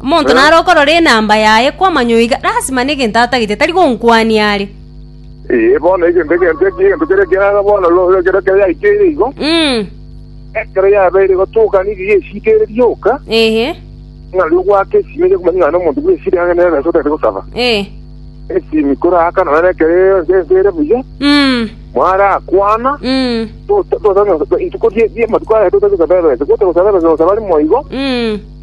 Omonto nare okorora enamba yaye kwamanya oiga, lasima negento atagete, tari gonkwania are. Ee, bono egento egento eki egento kere kiaga bono ro- ro- ekero yaikeire igo, Mm. ekero yabeire gotoka nigo yesikeire rioka, Ehe. ng'a riria ogwaka esimi onya komanya ng'a nomonto buna esiri ang'e nere nase otagete gosaba. Eh. Esimi koraka nonye na ekero ense ense ere buya, Mm. mwarakwana, Mm. tota- tota- tota- rituko rie- ri'amatuko aya totaete gosaba ebesa, gotogosa ebesa gosaba rimo igo, Mm.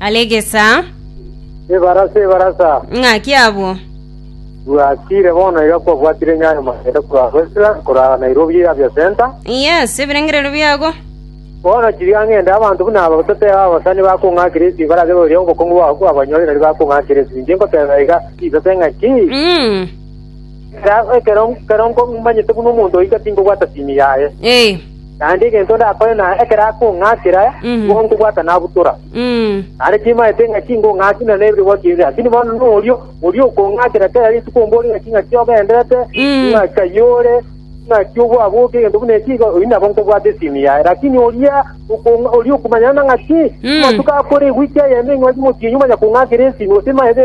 Alegesa. Ebarasa, ebarasa. Ng'aki abwo. Bwatire bono iga kwabwatire Nyayo Magere korwa Westlands korwa Nairobi Avia Center. Yes, ebirengererio biago. Bono chiria ng'ende abanto buna aba toteba abasani bakong'akire esi barage boria obokong'u bwabo kwabanyore nari bakong'akire esi. Inche nkoteba iga chisase ng'aki. Mm. Ekero ekero nko- manyete buna omonto oika tinkobwata simi yaye. Eh. naende egento ndakore na ekero akong'akera nigo nkobwata nabutora. Naende timaete ng'a tingong'aki na neberwa kende, lakini bono norio oria okong'akera kera rituko ombore ng'aki ng'aki ogenderete, ng'aki ayio ore, ng'aki obwaboke, egento buna eki igo, oyio nabo nkobwata esimi yaye. Lakini oria okong'a oria okomanyana na ng'aki amatuko akore eweek eyemo eng'wanso motienyi omanya kong'akera esimi, gose maete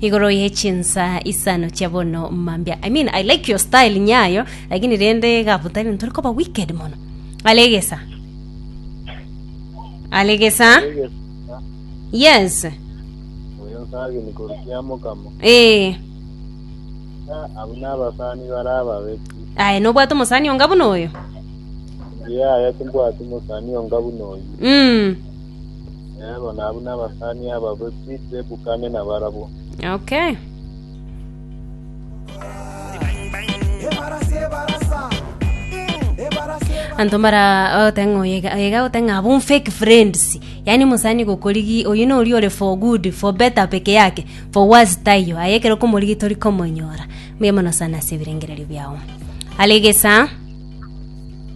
Igoro ye chinsa isano chia bono mambia. I mean, I like your style nyayo, lakini rende gabutari ntore koba wicked mono. Alegesa. Alegesa. Yes. Oyo sagini korukia mokamo. Eh. Abu n'abasani bara ababeki. Aye nobwate omusani onga buna oyo. Ngiye aya timbwati musani onga buna oyo. Mm. Eebo, nabwo nabasani aba boswi tebukane nabarabwo. Okay. anto mara ote ng'a oye iga- iga ote ng'a abun fake friends yaani mosani gokorigi oyu nori ore for good for better peke yake for worse tayo aye ekero komorigi tori komonyora mbuya mono sana ase ebirengererio biao alegesa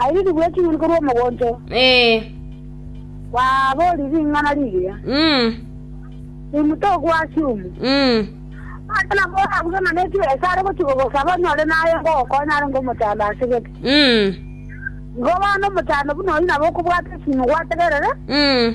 Airirigwe eking'uni korwa omogonto, Ee. kwaboria ring'ana rigiya, Mm. Nimuto okw'Asumu. Mm. Ase nabo orabuge ng'a ne chibesa ase are gochia kogosaba onyore naye ngogokonya arenge omochando ase gete. Mm. Igo bono omochando buna oyio nabo okobwata esimi gwategerere, Mm.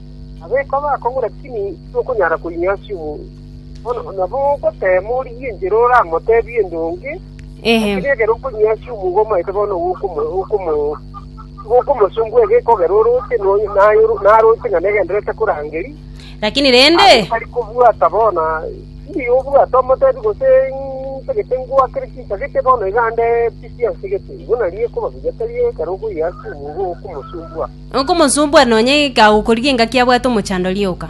Nabo ekoba akong'u lakini tokonyara koinywa ase omoyo. Bono nabo ogoteema origie enchera oramoteebie endonge, lakini ekero okonywa ase omoyo omaete bono tigokomosumbua ege ekogera orooche narooche ng'a negendererete korangeria. Lakini rende Aye tari kobwata bono tindi obwate omotebi gose ntagete ngoakere chintagete bono iga nde pi chiansegete. Igo nario ekoba buya tari ekero okoyia ase omoyo igo okomosumbua. Nokomosumbua nonya kagokorigia engaki abwate omochandori oka.